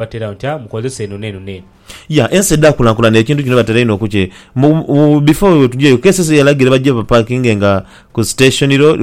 Batera batya? Mukozesa eno n'eno n'eno. Ya, ensi edhaakulankulanira ekintu kino batera inho okukye. Mu, mu bifo we tugyayo, KCC yalagira bagye bapakingenga ku station ro,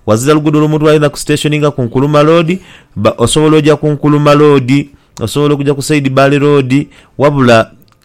ghazira luguudo lw'omuntu lw'ayinza kusitationinga ku Nkuluma Road. Ba, osobola oja ku Nkuluma Road, osobola okuja ku Said Bali Road, wabula.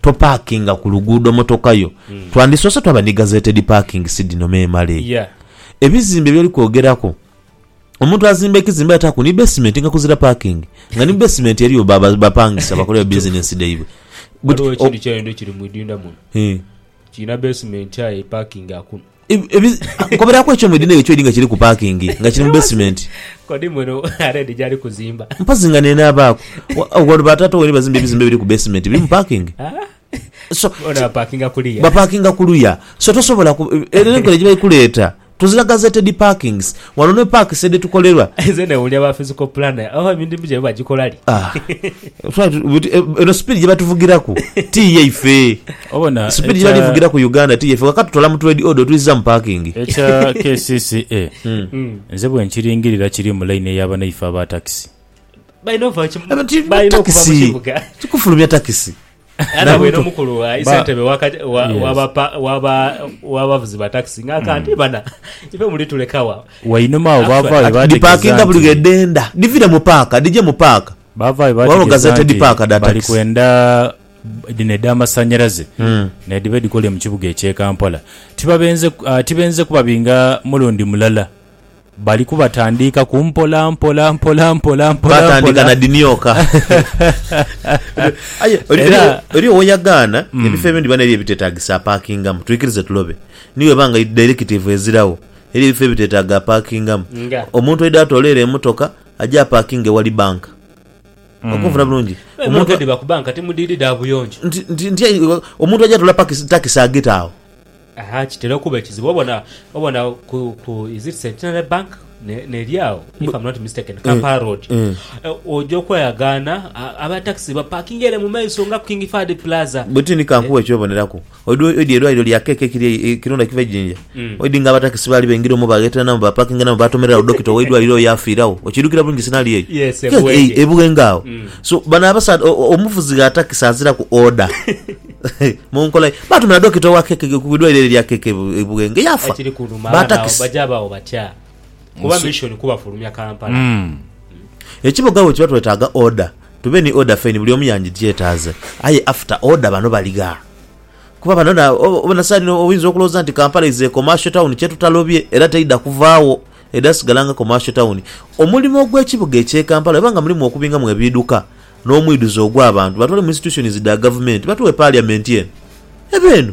Topaakinga ku luguudo motoka yo. Twandisoose twaba ni gazetted parking si dhino memale. Yeah. Ebizimbe by'oli kwogeraku, omuntu azimba ekizimbe ataaku ni basement nga kuzira parking, nga ni mu basement eriyo ba- ba- bapangisa bakolera business dhaibwe. But, Ghaligho o- ekintu kyaidho kiri mu idinda muno. Eh. Kirina basement aye parking akuna. Nkomeraaku ekyuma edhi n'eyo kyoidhi nga kiri ku paakingi, nga kiri mu besimenti. Kodi muno Red gyali kuzimba. Mpozi nga n'enaabaaku. Wano ba taata waine bazimba ebizimbe ebiri ku besimenti, birimu paakingi. So, Bona bapaakinga kuliya. bapaakinga ku luya. So tosobola ku, eno enkola gye bali kuleeta, tuzira gazetted parkings. Wano ne paakisi edhitukolerwa. Nze newuunya ba physical planner, oba emirimu gyaibwe bagikola li? Ah, try to, but eno sipiidi gye batuvugiraku ti yaife. Speed yali vugira ku Uganda ti yefe kakati tutola mu trade order otwizza mu parking. Ekya kcca nze bwenkiringirira kiri mu line eya banaife aba taxi. Balina ova okuva mukibuga. Kikufulumya takisi. Era bwene omukulu isentebe wabavuzi ba taxi nga aka nti bana ife mulitulekawa. Wainuma awo bavaayo bategeza nti. Dhipakinga buli ghedhenda. Dhivire mu paaka dhije mu paaka. Bavaayo bategeza nti bali kwenda. dhino edh'amasannyalaze n'edhiba edhikole mu kibuga eky'e Kampala tibabenze tibenze kubabinga mulundi mulala, bali kubatandiikaku mpola mpola mpola mpola mpola Baatandika mpola. na dhimyoka. Aye oli- Era- oli- oli owoyagaana ebifo ebindi bana eriyo ebitetagisa apakingamu twikirize tulobe ni bweba nga directive ezirawo eriyo ebifo ebitetaaga apakingamu Nga? omuntu aidha atoole ere emotoka aje apakinge ewali banka Okunfuna bulungi. Aye Omuntu mwogedde bakuba nka timudiidi dha buyonjo. nti- nti- nti ayi- wa- omuntu aja atula pakisi- takisi agita agho. Aha kitera okuba ekizibu obona obona ku ku is it Centenary Bank ne neri agho if I'm not mistaken Kampala Road eh. Eh, oja okweyagaana a- aba taxi bapakinga ere mu maiso nga ku King Fahd Plaza. Bwetindi kankuwe ekyoboneraku. Oidhi oidhi eidwaliro lya KK ekiri Kirunda Kiva e Jinja, oidhi nga abatakisi baali baingira omwo bagheteranamu baapaakinganamu baatomerera gho dokita w'eidwaliro oyo yaafiiragho. Okiidhukira bulungi sinaaliyo eyo? Yes, e Kek, Buwenge. E Buwenge agho. So, bano abasaadha, o- o- omuvuzi gha takisi aziraku order. Mu nkola ye. Baatumira dokita owa KK ku idwaliro eryo erya KK e Bu- e Buwenge, yaafa. Ekiri kunuma Ba abana abo takisi. baja bawo batya? kuba mission kuba fulumya Kampala mm. Ekiboga bwe kiba twetaaga order tube ni order fine buli omu yanjigyetaaze aye after order bano baligha kuba bano na obona sani oyinza okulowooza nti Kampala is a commercial town kyetutalobye era teidha kuvaawo edha sigala nga commercial town omulimo ogw'ekibuga ekye Kampala weba nga mulimu okubingamu ebiiduka n'omwiduze ogw'abantu batwale mu institutions dha gavumenti batuwe parliament eno ebe eno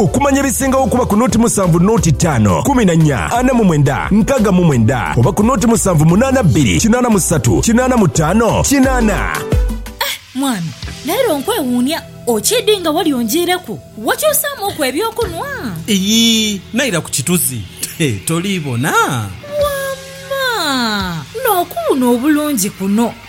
Okumanya ebisingagho kuba ku noti musanvu noti tano kumi na nya ana mu mwenda nkaga mu mwenda oba ku noti musanvu munana bbiri kinana musatu kinana mutano kinana. Eh mwami, leero nkwewuunia. Okiidhi nga wali onjiireku? Wakyusaamu ku eby'okunhwa? Iyii, naira ku kituzi. He, toliibona? Wamma! N'okuwuuna obulungi kuno!